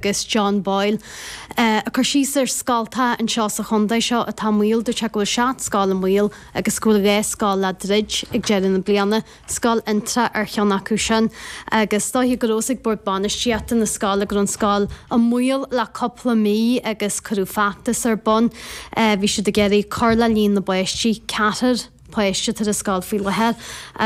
agus John Boyle, ag cur síos ar scoltacha anseo sa chontae seo atá i mbaol deir sé go bhfuil seacht scoil i mbaol agus go bhfuil dhá scoil le druid ag deireadh na bliana, scoil Fhionntrá ar cheann acu sin agus dóiche go raibh fhios ag bord bainistíochta na scoile go raibh an scoil i mbaol le cúpla mí agus cuireadh feachtas ar bun. Bhí siad ag iarraidh cur le líon na bpáistí, ceathrar páiste atá ar an scoil faoi láthair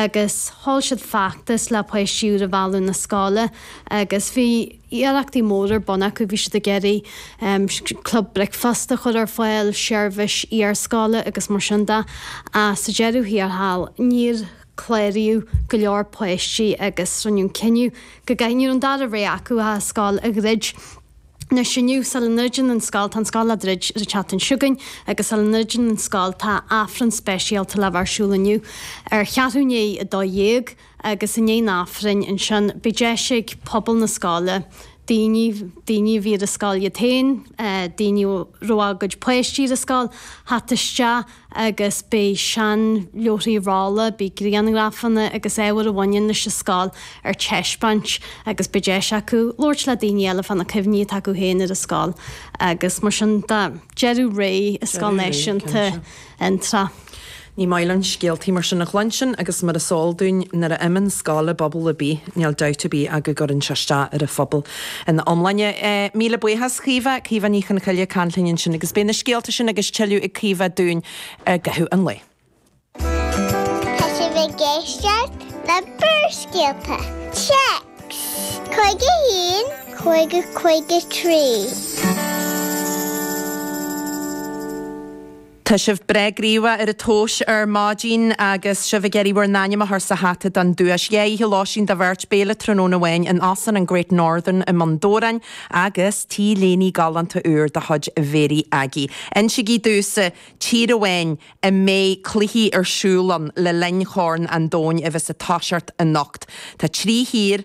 agus thóg siad feachtas le páistí úr a mhealladh na scoile agus bhí. iarrachtaí mór ar bun acu, bhí siad ag iarraidh ehm club bricfeasta a chur ar fáil, seirbhís iarscoile agus mar sin de ach sa deireadh thiar thall níor cláraíodh go leor páistí agus rinneadh an cinneadh nach raibh an dara rogha acu ach an scoil a dhruid. Anois inniu sula ndruideann an scoil, tá an scoil á druid sa tseachtain seo chugainn agus sula ndruideann an scoil tá Aifreann speisialta le bheith ar siúl inniu ar cheathrú i ndiaidh a dó dhéag, agus i ndiaidh an Aifrinn ansin beidh deis ag pobal na scoile, daoine, daoine a bhí ar an scoil iad féin, daoine a raibh a gcuid páistí ar an scoil, theacht isteach agus beidh seanleabharthaí rolla, beidh grianghrafanna agus ábhar a bhaineann leis an scoil ar taispeáint agus beidh deis acu labhairt le daoine eile fá na cuimhní atá acu féin ar an scoil agus mar sin de. Deireadh ré i Scoil Náisiúnta Fhionntrá. Ní maith linn scéaltaí mar sin a chluinstin agus mar is eol dúinn nuair a imionn scoil i bpobal ar bith níl dabht ar bith ach go gcuireann sé isteach ar an phobal ina iomláine. Míle buíochas Caoimhe, Caoimhe Ní Chonchoille linn ansin agus beidh na scéalta sin agus tuilleadh ag Caoimhe dúinn i gcaitheamh an lae. Tá sibh ag éisteacht le Barrscéalta, text, 51 50 53. Tá sibh breá gníomhach ar an téacs ar maidin agus sibh ag iarraidh bhur n-ainm a chur sa hata don duais. Dhá oíche lóistín do bheirt, béile tráthnóna amháin in Óstán an Great Northern i mBun Dobhráin agus t-léine galánta úr de chuid Mhary Aggie. Insígí domhsa tír amháin a mbeidh cluichí ar siúl ann le linn Chorn an Domhain a bheas ag toiseacht anocht. Tá trí thír.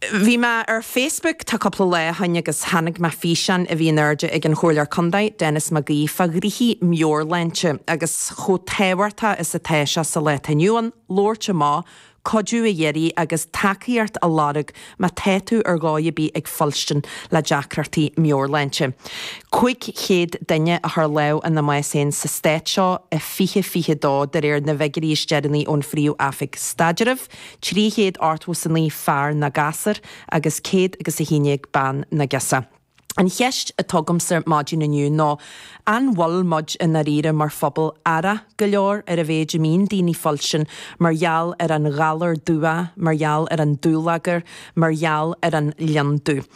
Bhí mé ar Facebook tá cúpla lá ó shoin agus tháinig mé ar fhíseán a bhí in airde ag an Chomhairleoir Contae, Denis Mac Aoidh fá chúrsaí meabhairshláinte agus chomh tábhachtach is atá sé sa lá atá inniu ann labhairt amach, cuidiú a iarraidh agus tacaíocht a lorg má tá tú ar dhóigh ar bith ag fuilstin le deacrachtaí meabhairshláinte. 500 duine a chuir lámh ina mbás féin sa Stát seo i 2022 de réir na bhfiguirí is deireanaí ón Phríomh-Oifig Staidrimh. Trí chéad ochtó is a naoi fear nó gasúr agus céad agus a haon dhéag bean nó girseach. An cheist a thógaimse maidin inniu ná an bhfuil muid i ndáiríre mar phobal aireach go leor ar an mhéid a mbíonn daoine ag fuilstin mar gheall ar an ghalar dubhach, mar gheall ar an dúlagar, mar gheall ar an lionndubh.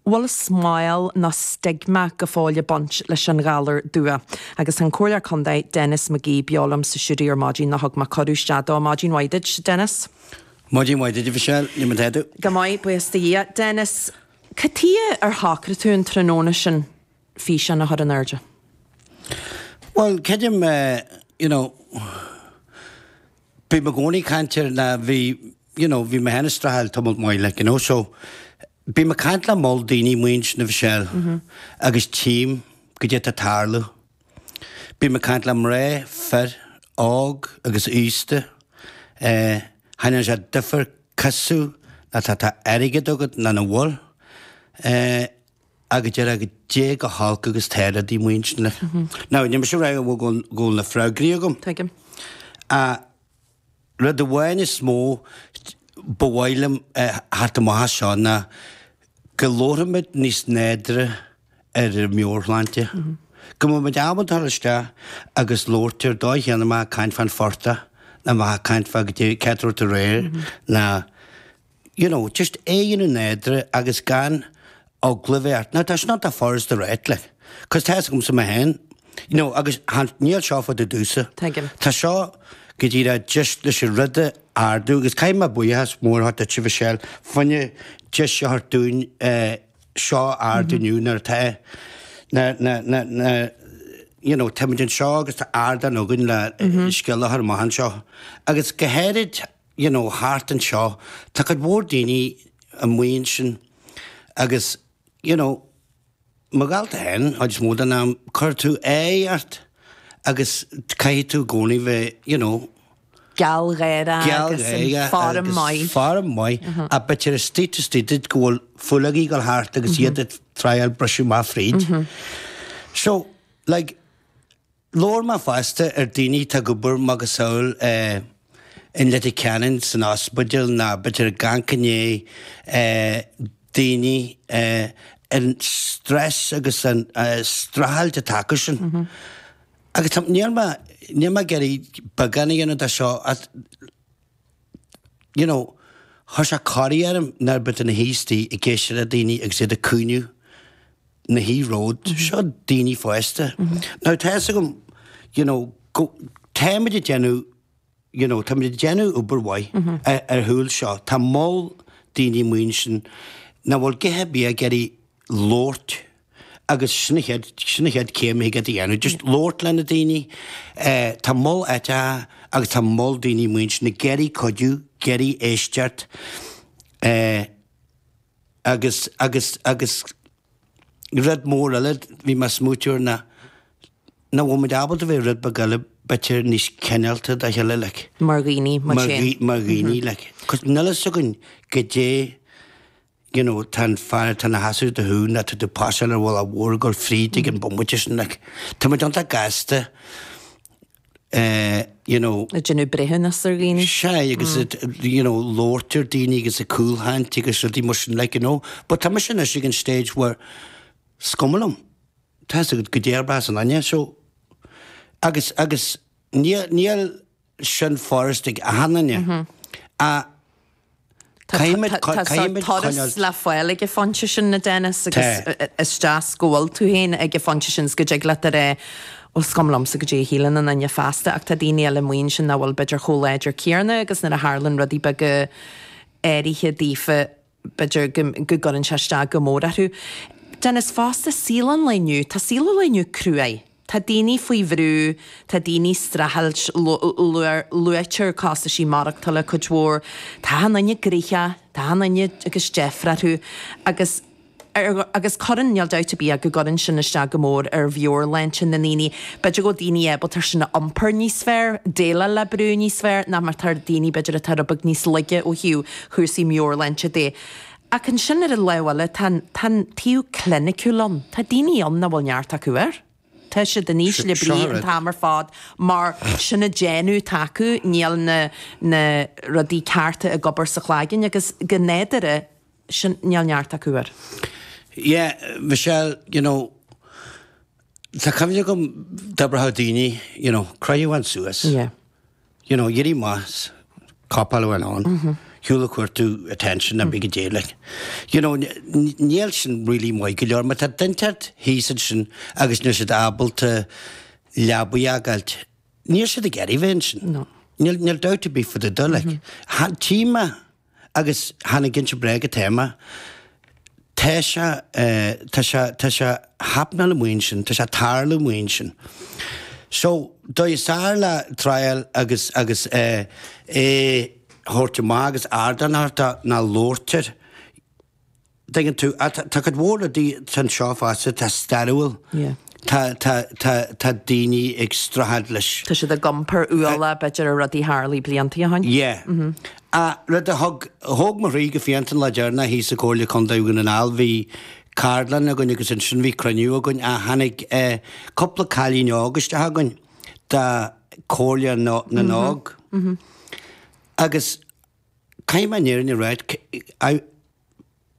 bhfuil smál nó stigma go fóill ag baint leis an ghalar dubhach. Agus tá an Comhairleoir Contae, Denis McGee, beo liom sa stiúideo ar maidin nó thug mé cuireadh isteach dó. Maidin mhaith duit, Denis. Maidin mhaith duit, a Mhichelle. Cad é mar atá tú. Go maith, buíochas do Dhia. Denis, cad tuighe ar shocraigh tú an tráthnóna sin físeán a chur in airde? Bhuel, creidim you know bím i gcónaí ag caint ar na, bhí you know bhí mé féin ag streachailt tamalt maith like you know so, Bím ag caint le moll daoine amuigh ansin, a Mhichelle, agus tchím goidé atá ag tarlú. Bím ag caint le mná, fir, óg agus aosta. Ní dhéanann sé duifear cosú ná tá tá airgead agat ná nach bhfuil. Ag deire go dté go holc agus tá rudaí amuigh ansin. Now, níl mise ag rá go bhfuil na freagraí agam. Tuigim. Ach. Rud amháin is mó ba mhaith liom a theacht amach as seo ná go labharfaimid níos nádúrtha ar an meabhairshláinte. Go mbeimid ábalta dul isteach agus labhairt air an dóigh chéanna mar tá caint fán phortach ná mar tá caint fá goidé, cá háit a raibh tú aréir ná you know, just é a dhéanamh nádúrtha agus gan eagla bheith ort. Now, tá sin iontach furast a ráit, like, cos tá's agamsa mé féin, you know, agus chan, níl seo furast domhsa. Tuigim. Tá seo go díreach just leis an rud a ardú agus caithfidh mé buíochas mór a thabhairt duitse, a Mhichelle, faoin deis a thabhairt dúinn eh, seo a ardú inniu nuair atá na, na, na, na, you know, táimid anseo agus tá ardán againn le scéal a chur amach anseo. Agus go háirid, you know thart anseo tá cuid mhór daoine amuigh ansin agus you know mo dhálta fhéin an chuid is mó den am cuirfidh tú aghaidh ort agus caithfidh tú i gcónaí bheith you know gealgháireach agus in form maith ach b'fhéidir istigh taobh istigh duit go bhfuil fuil ag dul thart agus iad ag tryáil briseadh amach fríd so like Labhair mé fosta ar daoine atá ag obair macasamhail i Leitir Ceanainn san ospidéal ná b'fhéidir chan aithníonn daoine an stress agus an streachailt atá acu sin. Agus tá, níl mé, níl mé ag iarraidh beagán a dhéanamh de seo, you know, chuir sé corraí orm nuair ba de na haostaí ag éisteacht le daoine agus iad ag caoineadh na high road, seo daoine fásta. Now tá fhios agam, you know, go, táimid ag déanamh, you know, táimid ag déanamh obair mhaith ar shúil seo, tá moll daoine amuigh ansin nach bhfuil githe bia ag iarraidh labhairt, agus sin an chéad, sin an chéad chéim a thig ort a dhéanamh, just labhairt leis na daoine. Eh, tá moll áiteacha agus tá moll daoine amuigh ansin ag iarraidh cuidiú, ag iarraidh éisteacht. Eh, agus, agus, agus rud mór eile, bhí mé ag smaoiteamh air na, nach bhfuil muid ábalta bheith rud beag eile b'fhéidir níos cineálta dá chéile, like. Mar dhaoine, like. Cos níl a fhios againn goidé. you know tá an fear atá ina sheasamh le do thaobh nó atá tú a phasáil ar an bhaile mhór ag gabháil fríd ag an bomaite sin like tá muid iontach gasta eh you know ag déanamh breithiúnas ar dhaoine agus you know labhairt ar dhaoine agus ag cúlchaint agus rudaí mar sin like you know but tá mise anois ag an stage where is cuma liom tá goidé a déarfas aon nduine so agus agus níl níl sin furast ag achan duine. Tá turas le fáil ag an phointe sin a Dennis agus is deas go bhfuil tú féin ag an phointe sin is go dtig leat a rá bhuel is cuma liomsa goidé a shíleann aon duine feasta ach tá daoine eile amuigh ansin nach bhfuil b'fhéidir chomh láidir céanna agus nuair a tharlaíonn rudaí beaga áirithe daofa B'fhéidir go gcuireann sé isteach go mór orthu. Dennis fosta, saol an lae inniu, tá saol an lae inniu cruaidh. Tá daoine faoi bhrú, tá daoine ag streachailt, luaitear costaisí maireachtála cuid mhór. Tá achan nduine gnoitheach, tá achan nduine agus deifre orthu agus. agus cuireann, níl dabht ar bith go gcuireann sin isteach go mór ar mheabhairshláinte na ndaoine. B'fhéidir go bhfuil daoine ábalta sin a iompar níos fearr, déileáil le brú níos fearr ná mar atá daoine b'fhéidir atá rud beag níos laige ó thaobh chúrsaí meabhairshláinte de. Ach ansin ar an lámh eile tá an, tá an taobh cliniciúil ann. Tá daoine ann nach bhfuil neart acu air. Tá siad in ísle brí an t-am ar fad mar, sin an déanamh atá acu, níl na, na rudaí cearta ag obair sa chloigeann agus go nádúrtha, sin, níl neart acu air. Yeah Michelle you know tá cuimhne agam go n-abróchadh daoine you know croith thú féin suas Yeah. you know éirigh amach as cop on man níl tú ach ag cuartú attention nó cibé goidé like you know níl sin really maith go leor mar tá daoine ar leith thíos ansin agus níl siad ábalta leabaidh a fhágáilt níl siad ag iarraidh bheith ansin No. níl níl doubt ar bith fá dtaobh dó like tchím a Agus chan ag inse bréaga atá mé. Tá sé, tá sé, tá sé ag happenáil amuigh ansin, tá sé ag tarlú amuigh ansin. So, dóigh is fearr le triail agus, agus eh, é a thabhairt amach agus ardán a thabhairt ná labhairt air. dtuigeann tú, tá cuid mhór rudaí anseo fosta atá stairiúil. Tá daoine ag streachailt leis. Tá siad ag iompar ualaigh b'fhéidir ar rudaí a tharlaigh blianta ó shin. Yea. Ach rud a thug, thóg mo chroí go fiánta an lá deireanach thíos i gComhairle Contae Dhún na nGall, bhí ceardlann againn agus ansin bhí cruinniú againn ach tháinig cúpla cailín óg isteach againn de Chomhairle na nÓg agus, Caithfidh mé an fhírinne a ráit,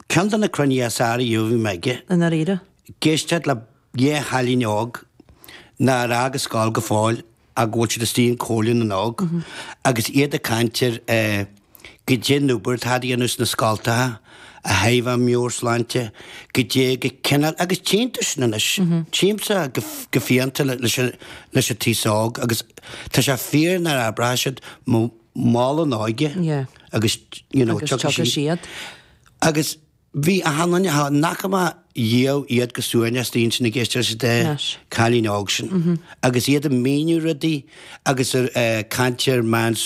ceann de na cruinnithe is fhearr ariamh a bhí mé aige. I ndáiríre? Ag éisteacht le dhá chailín óg nár fhág an scoil go fóill ach go bhfuil siad istigh i gComhairle na nÓg agus iad ag caint ar goidé an obair atá á dhéanamh sna scoltacha, a thaobh an mheabhairshláinte, goidé an cineál agus tchím sin anois, tchímse go fiánta leis an aos óg agus tá sé fíor mar a abras siad mol mol an óige agus you know tiocfaidh siad. Agus bhí, thug sé domh suaimhneas intinne ag éisteacht leis an dá chailín óg sin agus iad ag míniú rudaí agus ag caint ar meán